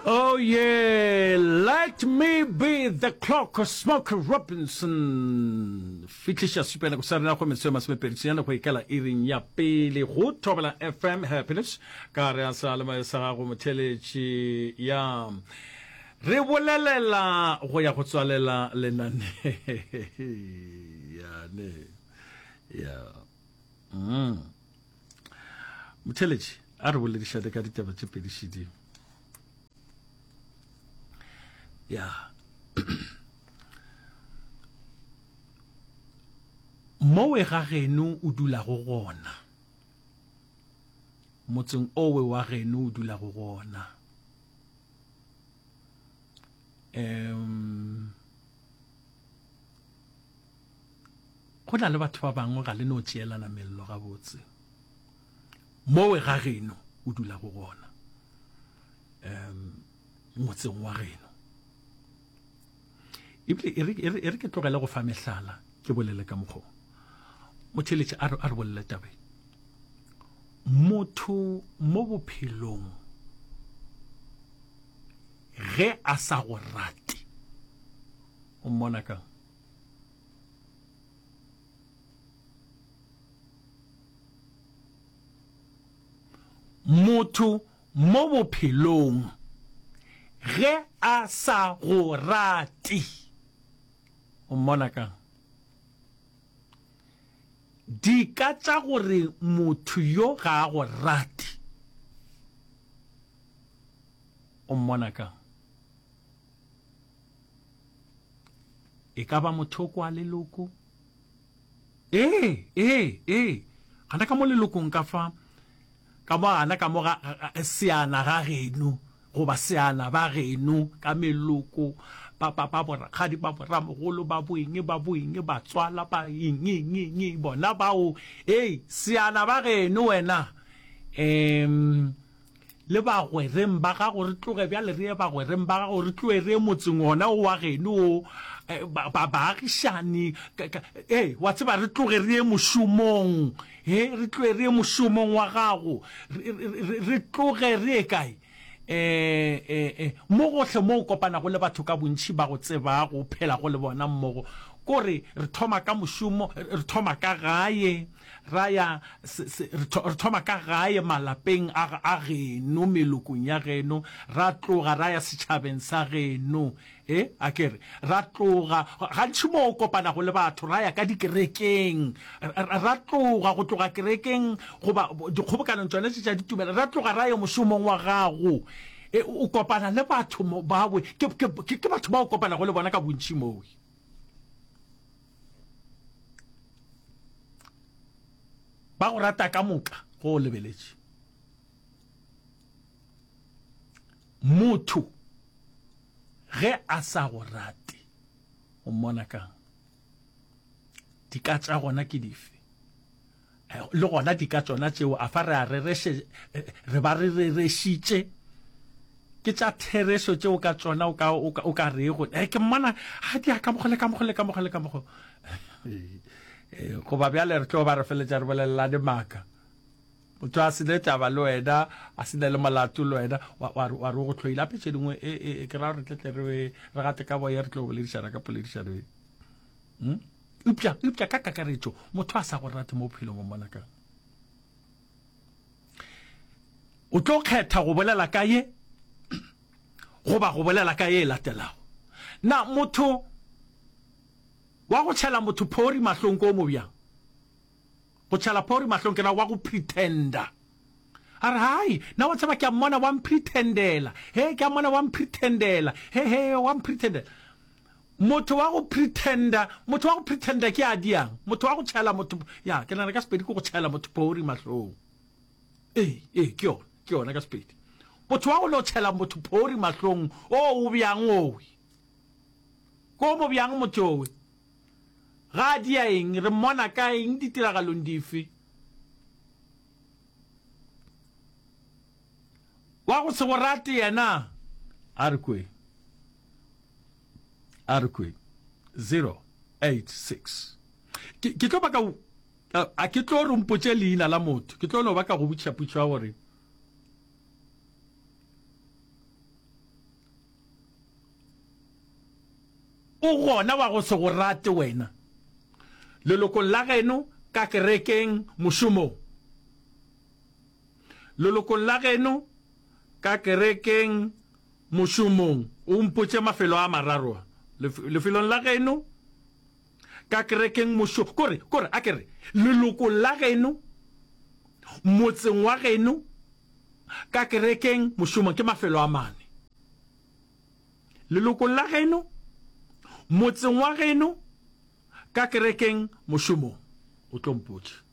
Oh yeah, let me be the clock, Smokey Robinson. Fitliša supela go sa rena go metso ya masomepedi senyana go ikela iring ya pele go thobela FM Happiness ka re a sa le mayo sa gago motheletši ya re bolelela go ya go tswalela lenane yane ya mm. motheletši a re boledišane ka ditaba tše pedi šedimo ya mowe ga geno o dulago gona motseng owe wa geno o dulago gona um Go na le batho ba bangwe ga le no tšeelana mello gabotse mowe ga geno o dula go gona um motseng wa geno ebile e re ke tlogele go fa mehlala ke bolele ka mokgwa motheletše a re bolele tabe motho mo bophelong ge a sa go rate O mmona kang? Motho mo bophelong ge a sa go rate o mmona kang? Dika tša gore motho yo ga a go rate o mmona kang? e ka ba mothoko wa leloko ee ee ee gana ka mo lelokong ka fa ka mo gana ka mo ga seana ga geno goba seana ba geno ka meloko ba ba ba borakgadi ba boramogolo ba boeng ba boeng ba tswala ba eng eng eng bona bao ee seana ba geno wena um le bagwereng ba gago, re tloge bjale re ye bagwereng ba gago, re tloge re ye motseng ona o wa geno o, ba, baagišani, ee, wa tseba, re tloge re ye mošomong, he, re tloge re ye mošomong wa gago, re, re, re tloge re ye kae? E-e-e, mo gohle mo o kopanago le batho ka bontši ba go tsebago, o phelago le bona mmogo, ko re, re thoma ka mošomo, re thoma ka gae. Ra ya, se, se, re, tho, re thoma ka gae, malapeng a, a geno, melokong ya geno, ra tloga ra ya setšhabeng sa geno. E, a ke re, ra tloga, gantši mo o kopanago le batho, ra ya ka dikerekeng, ra, ra tloga go tloga kerekeng, goba dikgobokanong tšona tše tša ditumelo, ra tloga ra ya mošomong wa gago. E, o kopana le batho mo, bawe, ke, ke, ke, ke batho ba o kopanago le bona ka bontši moo. ba go rata ka moka go o lebeletše motho ge a sa go rate o mmona kang dika tša gona ke dife Le gona di ka tšona tšeo, a fa re a rereše, re ba re rerešitše. Ke tša therešo tšeo ka tšona o ka, o ka, o ka rego, eh, ke mmona, ga di a ka mokgo le ka mokgo le ka mokgo le ka mokgo. Goba bjale re tlo ba re feletša re bolelelane maaka. Motho a se ne taba le wena, a se ne le molato le wena, wa re o go tlhoile. Gape tše dingwe, e, e, ke ra gore tletle re, re gate ka boye, re tlo boledišana ka poledišano ye. Hm? Eupša, eupša ka kakaretšo, motho a sa go rate mo bophelong o mmona kang? O tlo kgetha go bolela ka ye goba go bolela ka ye e latelago. Na motho wa go tšhela motho phori mahlong ko o mo bjang? Go tšhela phori mahlong ke na wa go pretender. A re, Hai, na wa tseba ke a mmona wa mpretendela. He, ke a mmona wa mpretendela. He, he, wa mpretendela. Motho wa go pretender, motho wa go pretender ke a diang. Motho wa go tšhela motho, ya, ke nana ka sepedi ke go tšhela motho phori mahlong. Ee, ee, ke yona, ke yona ka sepedi. Motho wa go no tšhela motho phori mahlong, o o bjang owe. Ko mo bjang motho owe. Ga a dia eng? Re mmona kae? Eng? Ditiragalong dife? Wa go se go rate yena? A re kwe. A re kwe. 086 ke ke tlo baka a ke tlo re mpotše leina la motho ke tlo no baka go butšha putšo ya gore O gona wa go se go rate wena, lelokong la geno, ka kerekeng, mošomong, lelokong la geno, ka kerekeng, mošomong, o mpotše mafelo a mararo a, lefelong la geno, ka kerekeng mošo, kore, kore, a ke re, lelokong la geno, motseng wa geno, ka kerekeng, mošomong, ke mafelo a mane. Lelokong la geno, motseng wa geno, ka kerekeng, mošomong. O tlo mpotša.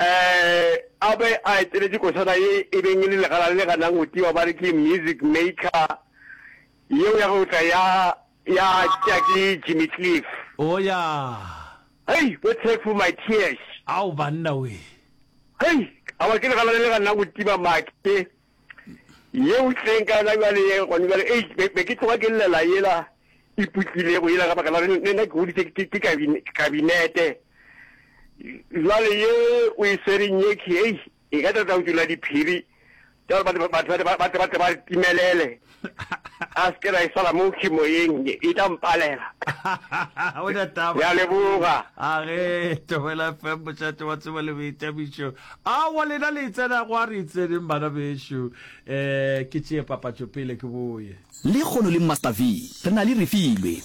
a be a eteletše kosana ye e beng e le legala le ganang go tiwa ba re ke Music Maker, yeo ya go tla ya ya tša ke Jimmy Cliff. Oh yeah. Hei, what take for my tears. Ao banna we. Hei, awa ke legala le le ganang go tiba make. ye o tleng ka yona jale ye gone jale ei be ke tloga ke llela yela e putlilego yela ka baka la gore nna ke goditse ke kabinete jale ye o e swereng ye ke ei e ka tata o tula diphiri jalo batho ba timelele a se ke la e sala mo kimoyeng e tla mpalela o na taba ya leboga a ge tobela fm mošate wa tsebo le boitabišo a wa lena le itsena go a re itseneng bana bešo um eh, ke tšee papatšo pele ke boye le kgono le master v re na le refilwe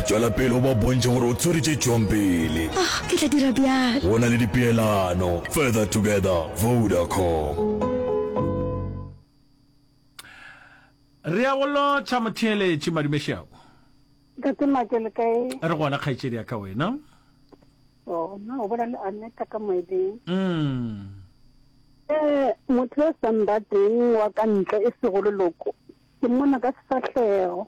Tšwela pele o ba bontšhe gore o tswere tše tšwang pele. Ah, ke tla dira bjalo. Go na le dipeelano. Further together, Vodacom. Re ya go lotšha motheeletši Madume Šeau. Ntate Make le kae? Re gona kgaetšedi ya ka wena. Oh, na o bola le Aneta ka moeding. Mm. Eh, motho o sa mbateng wa ka ntle e sego leloko. Ke mmona ka sefahlego.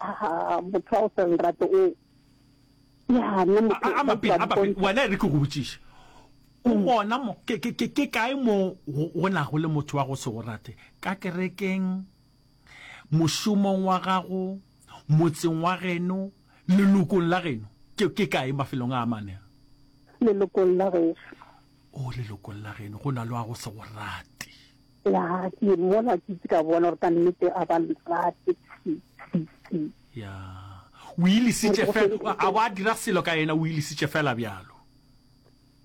Ah, motho wa go sa lerato o. Ya, nna motho. A, a mapele, a mapele. Wena e re ke go botšiše. O mm. bona mo, ke, ke, ke, ke kae mo go na go le motho wa go se go rate? Ka kerekeng, mošomong wa gago, motseng wa geno, lelokong la geno. Ke, ke kae mafelong a mane? Lelokong la geno. O lelokong la geno, go na le wa go se go rate. Ya, ke mola ke itse ka bona gore ka nnete a ba nrate. Ya, o ilisitše fela, a wa dira selo ka yena, o ilisitše fela bjalo.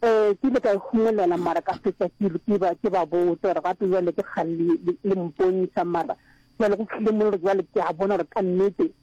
Eh, ke ile ka e humolela mara ka fetša ke ke ba ke ba botsa gore gape jwale ke kgale le mpontšha mara jwale go tlile mo gore jwale ke a bona gore ka nnete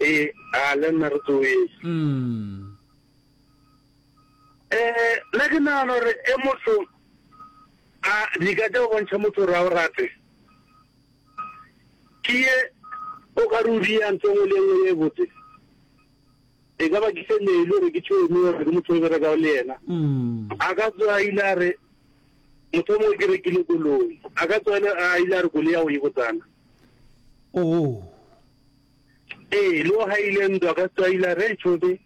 Ee, a le nna re tsoweng. Mm. Eh, nna ke nagana gore e motho a di ka tša go bontšha motho gore a o rate ke ye o ka re o di ya ntho nngwe le nngwe ye botse e ka ba ke se ne ile gore ke tšhoe mo gore ke motho o bereka le yena mm. a ka tswa a ile a re motho mongwe ke rekile koloi a ka tswa a ile a re koloi ya go e botsana oh Ee, le o haile ntwa ka Setswaila re tšho be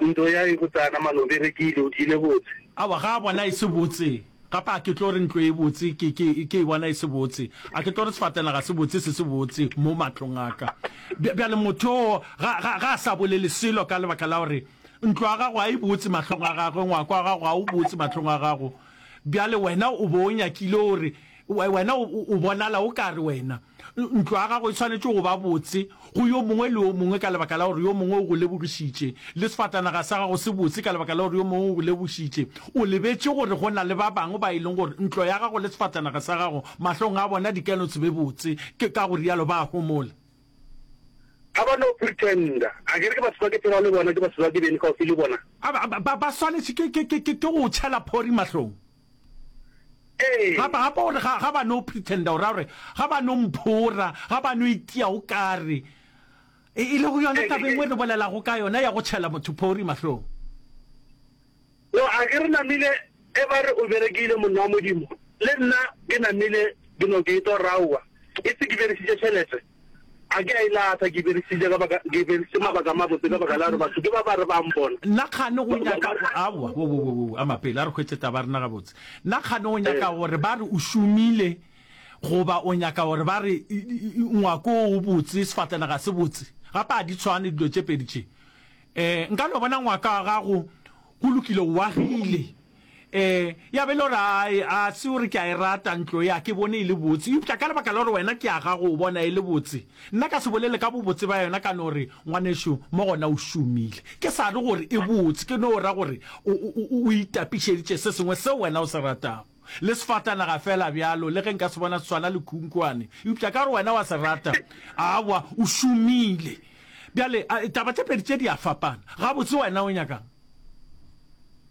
ntwo ya e botsana mano be re ke ile o di ile botse. Aowa ga a bona e se botse gape a ke tlo re ntlo e botse ke ke ke e bona e se botse a ke tlo re sefatela ga se botse se se botse mo matlong a ka bja bjale motho o ga ga ga a sa bolele selo ka lebaka la gore ntlo ya gago a e botse matlong a gagwe ngwako wa gago a o botse matlong a gago bjale wena o bo o nyakile o re We, wena o, o bonala o ka re wena, ntlo ya gago e swanetše go ba botse go yo mongwe le yo mongwe ka lebaka la gore yo mongwe o go lebogišitše, le sefatanaga sa gago se botse ka lebaka la gore yo mongwe o go lebogišitše. O lebetše gore go na le ba bangwe ba e leng gore ntlo ya gago le sefatanaga sa gago mahlong a bona di ka no se be botse, ke ka go rialo ba a homola. Ga ba no pretender. A ke re ke batho ba ke phelago le bona, ke batho ba ke beng kgauswi le bona. Ba, ba, ba, ba swanetše ke, ke, ke, ke, ke go o tšhela phori mahlong. Gape, gape gore ga, ga ba no pretenda go ra gore ga ba no mphora, ga ba no itia go kare e, e le go yona taba engwe re bolelago ka yona ya go tšhela motho phori mahlong. No, a ke re namile e ba re o berekile monna wa Modimo, le nna ke namile ke no ke etwa go ra aowa, e se ke beresitše tšhelete. A ke a e latlha, ke e beresitše ka baka, ke e beresitše mabaka a mabotse ka baka la gore batho ke ba ba re ba mpona. Na kgane go nyaka, aowa, wo, wo, wo, wo, ama pele, a re hwetše taba ya rena gabotse. Na kgane go nyaka gore ba re o šomile, goba o nyaka gore ba re ngwako wo o botse, sefatlana ga se botse? Gape ga di tshwane dilo tše pedi tše. Nka no bona ngwaka wa gago go lokile, o agile. Ee, ya be e le gore a se o re ke a e rata ntlo e, a ke bone e le botse, eupša ka lebaka la gore wena ke a gago o bona e le botse, nna ka se bolele ka bobotse ba yona ka no re, Ngwanešu, mo gona o šomile. Ke sa re gore e botse, ke no ra gore o, o, o, o itapišeditše se sengwe seo wena o se ratago. Le sefatanaga feela bjalo, le ge nka se bona se swana le khunkhwane, eupša ka gore wena wa se rata, aowa, o šomile. Bjale, a, taba tše pedi tše di a fapana. Gabotse wena o nyaka'ng?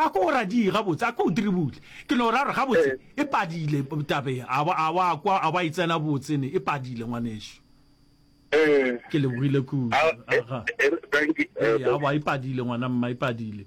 a ko o radie gabotse a ko o diribule ke no ra gore gabotse e padile tabe a wa kwa a wa e tsena botsene e padile ngwaneso ke lebogile kudu a wa e padile ngwana mma e padile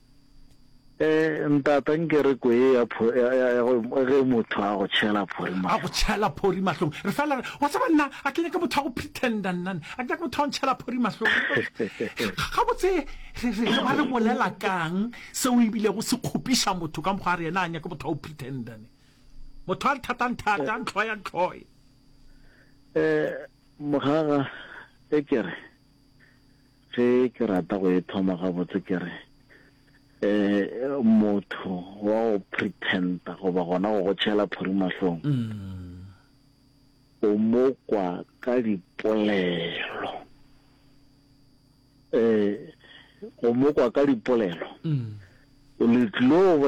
Eh, ntata nke re ko e ya pho- ya- ya- ya go- ge motho a go tšhela phori a go tšhela phori mahlong re fela re wa tseba nna a ke nyake motho a go pretenda nnane a ke nyake motho a go ntšhela phori mahlong gabotse re re re ba re bolela kang seo ebilego se kgopiša motho ka mokgwa a re yena a nyake motho a go pretendane motho a nthatang thata ntlhoya ntlhoye Eh, mogaga e kere Ge ke rata go e thoma gabotse ke re, um motho wa go pretender goba gona go go tšhela phuri mahlong, o mo kwa ka dipolelo. Um go mo kwa ka dipolelo, le tlo.